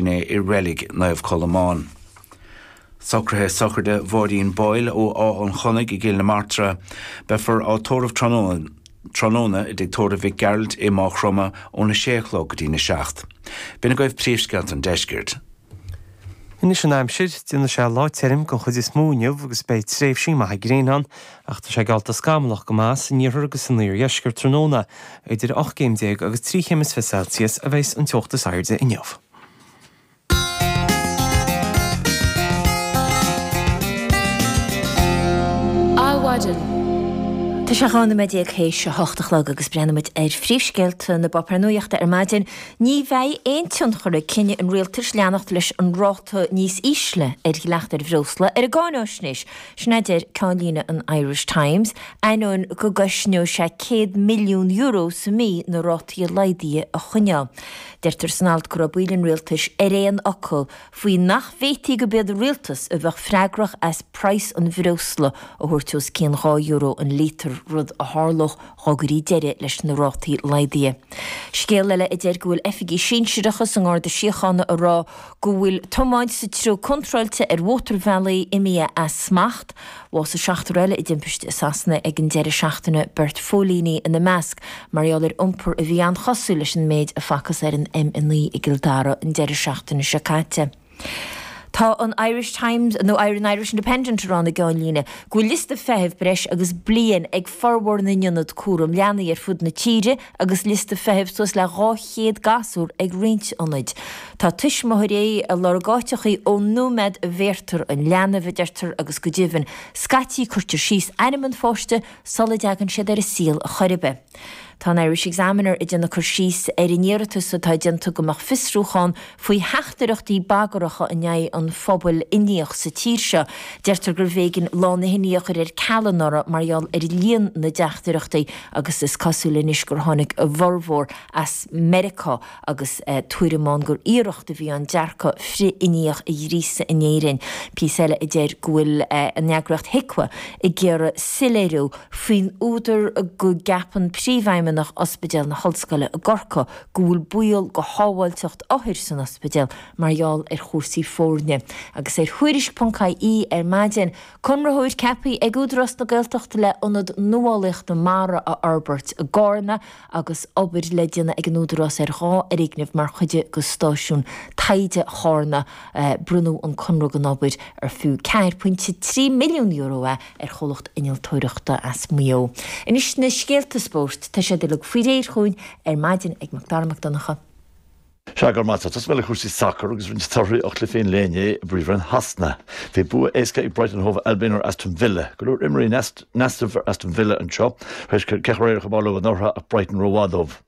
inné i reilig Naomh Colmán. Socruithe sochraide Mháirín Boyle ó Áth an Chonaidh i gCill na Martra. Beifear á tórramh tráthnóna i dTigh Tórraimh Mhic Gearailt i Maigh Chromtha óna sé a chlog go dtína seacht. B'in agaibh príomhscéalta an Deiscirt. Anois an aimsir, déanfaidh sé lá tirim den chuid is mó inniu agus beidh tréimhsí maithe gréine ann Ach tá sé geallta scamallach go maith san iarthar agus san iardheisceart tráthnóna, idir ocht gcéim déag agus trí chéim agus fiche Celsius a bheas an teocht is airde inniu. Tá sé dhá nóiméad déag théis a hocht a chlog agus breathnaímid ar phríomhscéalta na bpáipéar nuachta ar maidin. Ní bheidh aon tionchar ag cinneadh an rialtais leanacht leis an ráta níos ísle ar dhleacht ar bhreosla ar an gcáinaisnéis. Sin a deir ceannlíne an Irish Times, ainneoin go gcosnódh sé €100 milliún sa mí na rátaí laghdaithe a choinneáil. Deirtear san alt go raibh baill an rialtais ar aon fhocal faoi nach bhféadfaí gurb iad an rialtas a bheadh freagrach as praghas an bhreosla a thabhairt os cionn dhá euro an líotar, rud a tharlódh dhá gcuirí deireadh leis na rátaí laghdaithe. Scéal eile a deir go bhfuil oifigigh shinsearacha sa nGarda Síochána ag rá go bhfuil tiomáint sa treo contráilte ar mhótarbhealaí imithe as smacht. Bhásaigh seachtar eile i dtimpiste i Sasana ag an deireadh seachtaine, beirt phóilíní ina measc, mar gheall ar iompar a bhí an-chosúil leis an méid a facthas ar an M9 i gCill Dara an deireadh seachtaine seo caite. Tá an Irish Times, nó an Irish Independent a rá ina gceannlíne go bhfuil liosta feithimh breis agus bliain ag formhór na n-ionad cúraim leanaí ar fud na tíre, Agus liosta feithimh suas le 200 gasúr ag roinnt ionaid, tá tuismitheoirí ag lorg áiteachaí ón nóiméad a bhéartar an leanbh, a deirtear agus go deimhin, scaití cuirtear síos ainm an pháiste sula dteagann siad ar an saol chor ar bith. Tá an Irish Examiner ag déanamh cur síos ar an iarratas atá déanta go mbeadh fiosrúchán faoi theachtaireachtaí bagaracha in aghaidh an phobail Indiach sa tír seo. Deirtear gurbh éigean Lá na hIndia a chur ar ceal anuraidh mar gheall ar líon na dteachtaireachtaí agus is cosúil anois gur tháinig a bhformhór as Meiriceá agus tuairim ann gur iarracht a bhí ann dearcadh frith-Indiach a ghríosadh in Éirinn. Píosa eile a deir go bhfuil an eagraíocht HIQA ag iarraidh soiléiriú faoin údar go gceapann Príomhfheidhmeannach Ospidéal na hOllscoile i gCorcaigh, go bhfuil baol go shábháilteacht othair san ospidéal mar gheall ar chúrsaí foirne. Agus ar Thuairisc ponc IE ar maidin, conraitheoir ceaptha ag Údarás na Gaeltachta le Ionad Nuálaíochta Mara a fhorbairt i gCarna agus obair le déanamh ag an Údarás ar dhá fhoirgneamh mar chuid de stáisiún taighde Charna. Bronnadh an conradh don obair ar fiú €4.3 milliún a ar chomhlacht innealtóireachta as Maigh Eo. Anois na scéalta spóirt. Tá siad uilig faoi réir chugainn ar maidin ag Mac Dara Mac Donncha. Sea, go raibh maith a't. Tosóidh mé le cúrsaí sacair agus roinnt torthaí ó chluichí an lae inné i bPríomhroinn Shasana. Bhí bua éasca ag Brighton Hove Albion ar Aston Villa. Go leor imreoirí in easnamh ar Aston Villa anseo, tar éis ceathrú háit a chrochadh leo anuraidh ach Brighton ró-mhaith dóibh.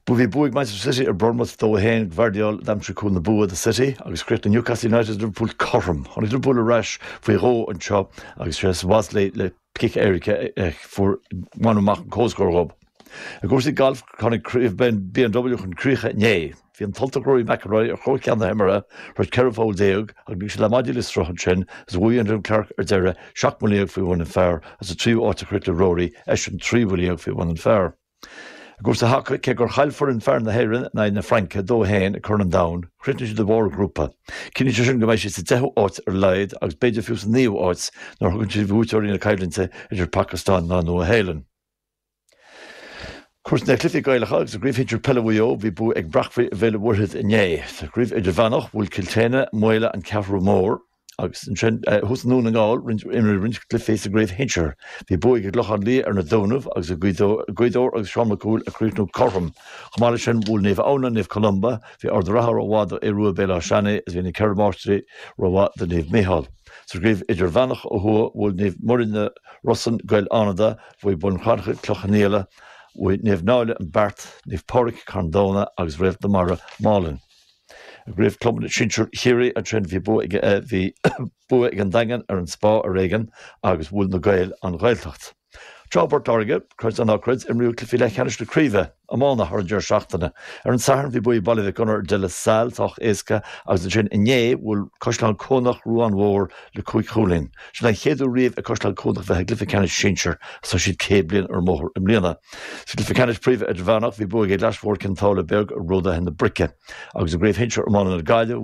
Bhuaigh Bhí bua ag Manchester City ar Bournemouth 2 1. Gvardiol a d'aimsigh cúl na bua do City agus chríochnaigh Newcastle United is Liverpool cothrom. Tháinig Liverpool ar ais faoi dhó anseo agus is é Szoboszlai le cic éirice a fuair bhain amach an comhscór dhób. I gcúrsaí gailf tháinig Craobh BMW chun críche inné. Bhí an tUltach Rory McIlroy ar chóir ceann na himeartha tar éis 14 pholl ach lig sé na maidí le sruth ansin agus bhuaigh Wyndham Clark ar deireadh seacht mbuille dhéag faoi bhun an phar is sa tríú áit a chríochnaigh Rory eisean trí bhuille dhéag faoi bhun an phar. I gcúrsaí haca, cé gur chaill foireann fear na hÉireann in aghaidh na Fraince 2-1 ag Corn an Domhain, chríochnaigh siad i mbarr an ghrúpa. Cinntíonn sé sin go mbeidh siad sa deichiú áit ar a laghad agus b'fhéidir fiú sa naoú áit nuair a thugann siad bhuaiteoirí na coimhlinte idir Phacastáin ná Nua Shéalainn. Cuairt ar na cluichí Gaelacha agus i gCraobh Shinsir Peile Mhaigh Eo, bhí bua ag Breacmhaigh ar Bhéal an Mhuirthead inné. Sa gCraobh Idirmheánach, bhuail Cill tSéadhna, Maolla, An Cheathrú Mhór, Agus ansin, thuas i nDún na nGall, imríodh roinnt cluichí sa gcraobh shinsir. Bhí bua ag an gClochán Liath ar na Dúnaibh agus Gaoth Dobhair agus Seán Mac Cumhaill ag críochnú cothrom. Chomh maith leis sin, bhuail Naomh Adhamhnáin Naomh Columba, bhí Ard a' Ratha rómhaith do Aodh Ruadh Béal Átha Seannaidh is bhí na Ceithre Máistrí rómhaith do Naomh Micheál. Sa gcraobh idirmheánach ó thuaidh, bhuail Naomh Muire na Rosann Gaeil Fhánada, bhuaigh Bun Cranncha Cloich Cheannfhaola, bhuaigh Naomh Náille an Beart, Naomh Pádraic Carn Domhnach agus Réalt na Mara, Málainn. I gCraobh Chlubanna Sinsir Chiarraí ansin bhí bua ag bhí bua ag an Daingean ar an Spá ar éigean agus bhuail na Gaeil an Ghaeltacht. Thoir i bPort Láirge, creid é ná creid, imríodh cluichí leathcheannais na craoibhe iomána thar an deireadh seachtaine. Ar an Satharn bhí bua ag Baile Mhic Gonair ar De La Salle sách éasca agus ansin inné bhuail Caisleán Cuanach Ruán Mhór le cúig chúilín. Sin an chéad uair riamh ag Caisleán Cuanach a bheith i gcluiche ceannais sinsir is tá siad 100 bliain ar an mbóthar i mbliana. Sa gcluiche ceannais Príomha Idirmheánach bhí bua ag an gClais Mhór Cionn tSáile Beag ar Ródaithe na Brice agus i gCraobh Shinsir Iomána na Gaille